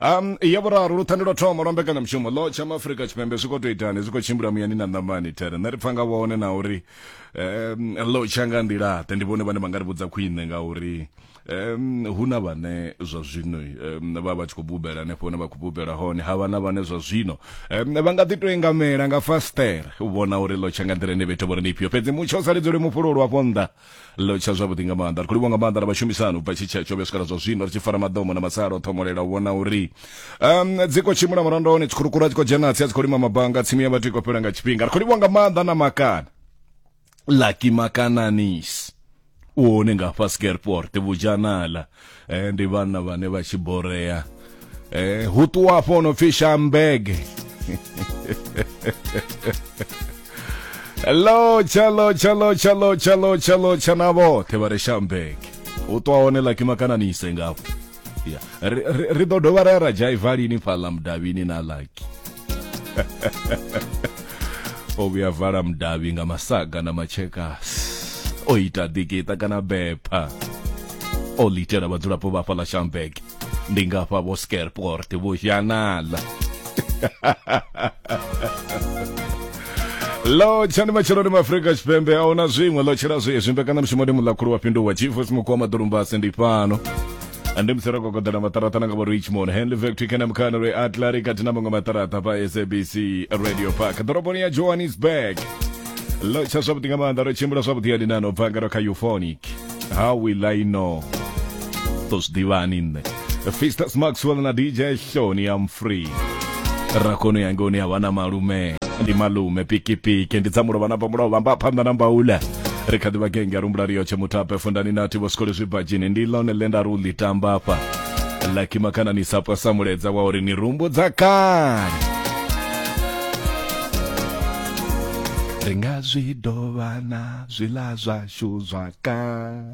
um ya vhuraru luthande lwa thoma lwa mbekanyamushumo lo tsha maafurika tshipembe zwi khou tou itani zwi khou tshimbila muyani na ṋamani tere nṋe ri pfa nga vhone na uri um lo tsha nga nḓilaḓe ndi vhone vhane vha nga ri vhudza khwine ngauri um hu na vhane zwa zwino um vha vha tshi khou bubela hanefho hune vha khou bubela hone ha vha na vhane zwa zwino um vha nga ḓi tou engamela nga fastere u vhona uri lo tsha nga nḓila ine vhethu vho ri ndi ifhio fhedzi mutsho u sa lidzeli mufhululu afho nnḓa lo tsha zwavhuḓi nga maanḓa ri khou livha nga maanḓa na vhashumisani ubva tshi tsha tsho vhe swikela zwa zwino ri tshi fara madomo na masalo thomolela u vhona uri um dzi khou tshimbila murandoni dzi khurukura dzi khou dzhena tsi a dzi khou lima mabanga tsimu ya vhathu i khou fhela nga tshifhinga ri khou livha nga maanḓa na makana lucky makananis u hone nga fhasi ka airport vujanala eh, ndi vhana vhane vha tshi borea eh, hu ṱuwa afho o no pfi shambege lo chalo chalo chalo chalo chalo chana vhoṱhe vha re shambege u ṱwa hone laki makananise ngafho ya ri- ri ri ḓo dovha ra ya ra dzhaiva lini fhaḽa mudavhini na laki o vhuya vala mudavhi nga masaga na matshekasi o ita ḓikiṱa kana bepha o litela vhadzulapo vha fhaḽa shambek ndi nga fha vho scareport vho zhanala lo tshani matsheloni maafrika tshipembe a huna zwiṅwe lo tshela zwezwi mbekanamushumo ndi muḽakhulu wa fhinduwa chief simukhu wa maḓulumbasi ndi fhano ande musara kokodana matarata nanga varichmond henley factory kana mukana re atlari kati na mamwe matarata pa sabc radio park dhoroboni ya johannesburg locha zwavhuḓi nga maanḓa ro tshimbila zwavhuḓi ya dinano bva ngaro kha euphonic how will i know to zwi ḓivhani nṋe fistas maxwell na dj shoni am free rakono yanga une ya vha na malume ndi malume pikipiki ndi dza mulovha na pamulaho vhamba phanḓa na mbaula ri kha ḓi vha genge rumbula riyo tshe mutape fundani na thivo sikole zwibadzhini ndi lone ḽe nda ri u ḽi tamba afha laki makana ni sa pwa sa muledza wa uri ni rumbo dza kale ri nga zwi dovha na zwiḽa zwashu zwa kale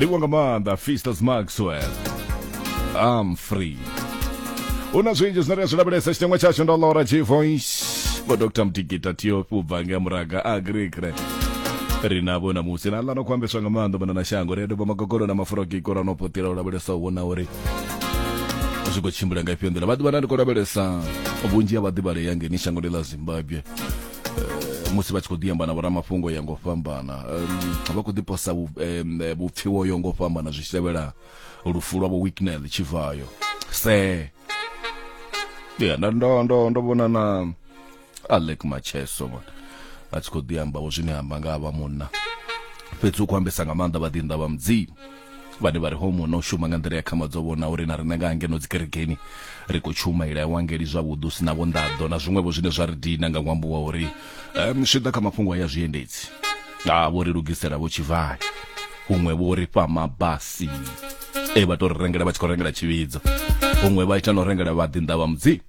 livhuwa nga maanḓa fisters maxwell am free hu na zwinzhi zwine ri a zwi lavhelesa tshiteṅwa tshashu ndo lora g voice vho dr mtigita tiofi u bva nga muraga a agrikre ri navho namusi na ḽano khou ambeswa nga maanḓa vhona na shango ri a doba magogolo na mafurogiko ra no potela u lavhelesa u vhona uri zwi khou tshimbila nga ifhio nḓila vha ḓivha na ndi khou lavhelesa vhunzhi ha vhaḓivhalea ngeni shangoni ḽa zimbabwe Eh, musi vha tshi khou ḓi amba na vhoramafhungo ya ngo fhambana vha khou ḓiposa vhupfiwo yo ngo fhambana zwi tshi tevhela lufu lwa vho wicknel tshivhayo se ya ndo ndo ndo vhona na alek macheso vhona a tshi khou ḓi amba vho zwine amba nga vha munna fhedzi u khou ambesa nga maanḓa vhaḓinḓa vha mudzimu vhane vha ri homo na u shuma nga nḓila ya khama dzo vhona uri na riṋe nga hangeno dzikerekeni ri khou shuma ila ya wangeli zwavhuḓi u si na vhonḓaḓo na zwiṅwevho zwine zwa ri dina nga ṅwambo wa uri um zwi ḓa kha mafhungo a ya zwiendedzi a vho ri lugisela vho tshivhali huṅwe vho ri fha mabasi e vha tou ri rengela vha tshi khou rengela tshivhidzo huṅwe vha ita na u rengela vhaḓinḓa vha mudzimu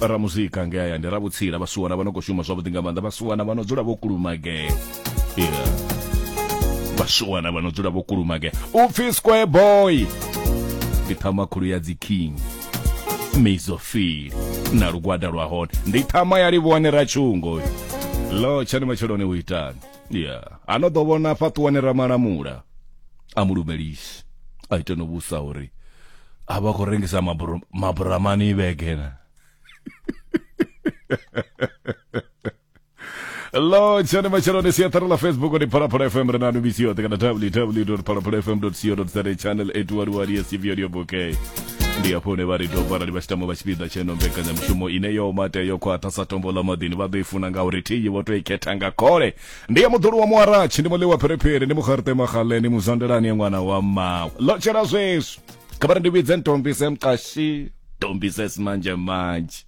ra muzika nge hayani ra vhutsila vhasuwana vha no khou shuma zwavhuḓi nga maanḓa vhasuwana vha no dzula vho kulumagea yeah. vhasuwana vha no dzula vho kulumagea u pfi square boy ndi ṱhama khulu ya dzi king mizofili na lugwada lwa hone ndi ṱhama ya livhone ra tshungo lo tshani matsheloni u itani ya a no ḓo vhona fhaṱuwane ramalamula a mu lumelisi a ite no vhusa uri a vha khou rengisa mabura- maburamani vhegena lo tshone matsheloni siaṱari ḽa facebook ndi phalaphala fm ri na nubisi yoṱhe kana www phalaphala fm co za channel 811 yes if you're okay ndi hafho hune vha ri doba arali vha tshi tama vha tshipiḓa tsheno mbekanyamushumo ine yo mate yo khwaṱha sa tombo ḽa maḓini vha ḓo i funa nga uri thiyi vho to i khetha nga khole ndi ya muḓulu wa muaratshi ndi muḽiwa pherephere ndi mukharite magaleni muzwandelani ya ṅwana wa mmawe ḽo tshela zwezwi kha vha ri ndi vhidze ntombise mqashi tombise simanjemanje